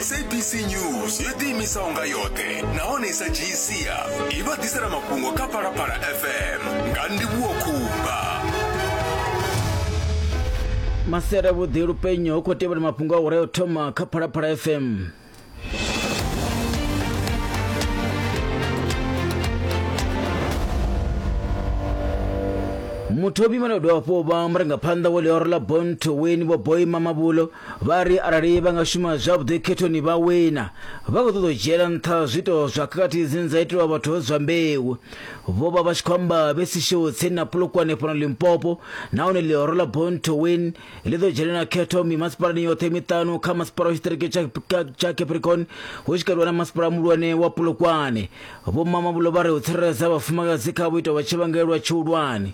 sabc news yo ḓiimisa unga yoṱhe nahone i sa dzhiyi sia i vha ḓisela mafhungo kha phalaphala fm nga ndivhuwo khumba masera vhuḓi lupenyo hu khou tevhela mafhungo a hure o thoma kha phalaphala fm muthomi vhane dovha hafhu vha murangaphanḓa wa ḽioro ḽa bon to win vho boy mamabulo vha ri arali vha nga shuma zwavhuḓi khethoni vha wina vha khou ṱoḓa u dzhiela nṱha zwiito zwa khakhathi dzine dza itelwa vhathu vha zwa mbeu vho vha vha tshi khou amba vhe sishou tsini na polokwane fhano limpopo nahone ḽioro ḽa bon to win ḽi ḓo dzhenela khetho mimasipalani yoṱhe miṱanu kha masipala wa tshiṱiriki tsha capricorn hu tshi katelwa na masipala muhulwane wa pulukwane vho mamabulo vha ri u tsireledza vhafumakadzi kha vhuito vha tshivhangelwa tshihulwane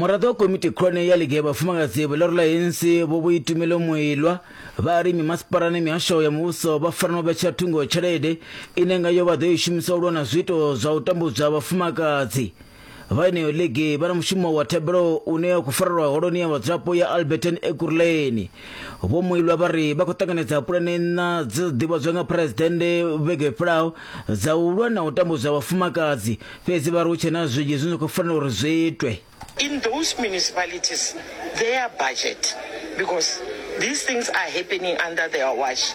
muraḓo wa komiti khulwane ya ligi ya vhafumakadzi vha ḽorula hensi vho vho itumelo muilwa vha ri mimasipala na mihasho ya muvhuso vha fanela u vhetshela thungo tshelede ine ngayo vha ḓo i shumisa u lwa na zwiito zwa u tambudzwa vhafumakadzi vha eneyo ligi vha na mushumo wa thebelo une wa khou farelwa holoni ya vhadzulapo ya alberton ekurleni vho muilwa vha ri vha khou ṱanganedza pulane nṋa dzi ḓivhadzwa nga phuresidennde vhege fhelaho dza u lwa na u tambudzwa vhafumakadzi fhedzi vha ri hu tshe na zwinzhi zwine zwa khou fanela uri zwi itwe in those municipalities their budget because these things are happening under their watch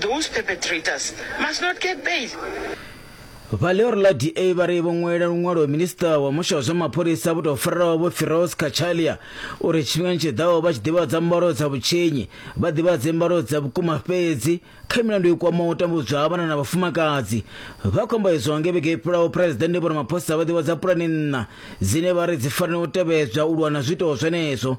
Those perpetrators must not get bail. Vha ḽioro ḽa DA vha ri vho ṅwalela luṅwalo minista wa musha wa zwa mapholisa vho tou farelaho vho Firoz Cachalia uri tshifhingani tshi ḓaho vha tshi ḓivhadza mbalo dza vhutshinyi vha ḓivhadze mbalo dza vhukuma fhedzi kha milandu i kwamaho u tambudzwa ha vhana na vhafumakadzi vha khombo izwo nge vhege i fhelaho phuresidennde vho ramaphosa vha ḓivhadza pulani nṋa dzine vha ri dzi fanela u tevhedzwa u lwa na zwiito zwenezwo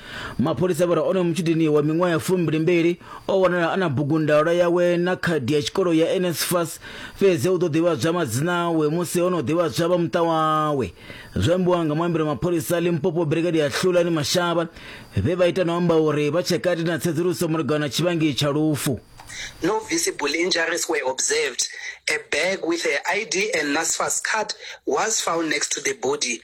mapholisa vha ri onoyo mutshudeni wa miṅwaha ya fumbilimbili o wanala a na bugundalwa yawe na khadi ya tshikolo ya nsfas fhedzi u ḓo ḓivhadzwa madzina awe musi ho no ḓivhadzwa vha muṱa wawe zwo ambiwa nga muambeli wa mapholisa limpopo brigade ya hlulani mashaba vhe vha ita no amba uri vha tshe kati na tsedzuluso malugana na tshivhangi tsha lufu No visible injuries were observed. A bag with her ID and NSFAS card was found next to the body.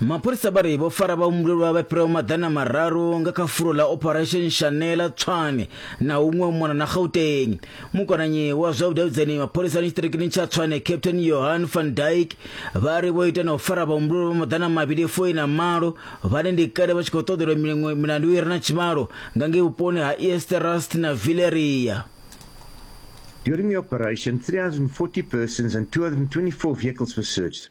Mapholisa vha ri vho fara vhahumbulelwa vha fhiraho maḓana mararu nga kha fulo ḽa Operation Shanela Tshwane na huṅwe mona na Gauteng. Mukonanyi wa zwa vhudavhidzani mapholisani tshiṱirikini tsha Tshwane Captain Johan van Dyk vha ri vho ita na u fara vhahumbulelwa vha maḓana mavhili foi na malo vhane ndi kale vha tshi khou ṱoḓelwa miṅwe milandu i re na tshivhalo nga ngei vhuponi ha Easterust na Villeria. During the operation, 340 persons and 224 vehicles were searched.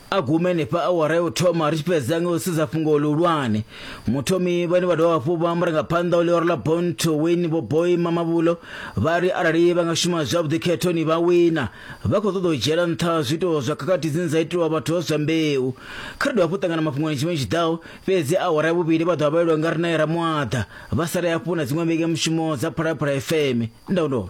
a gume henefha awara ya u thoma ri tshi fhedza nga u sedza fhungo ḽihulwane muthomi vhane vha dovha hafhu vha murangaphanḓa o ḽioro ḽa bon to win vho boy mamabulo vha ri arali vha nga shuma zwavhuḓi khethoni vha wina vha khou ṱoḓa u dzhiela nṱha zwiito zwa khakhathi dzine dza itiwa vhathu zwa mbeu kha ri dovha hafhu ṱangana mafhungoni tshifhinga tshi ḓaho fhedzi awara ya vhuvhili vha ḓovha vha elwa nga rinae ramuaḓa vha sale hafhu na dziṅwe vhege mushumo dza phalaphala fm ndaundo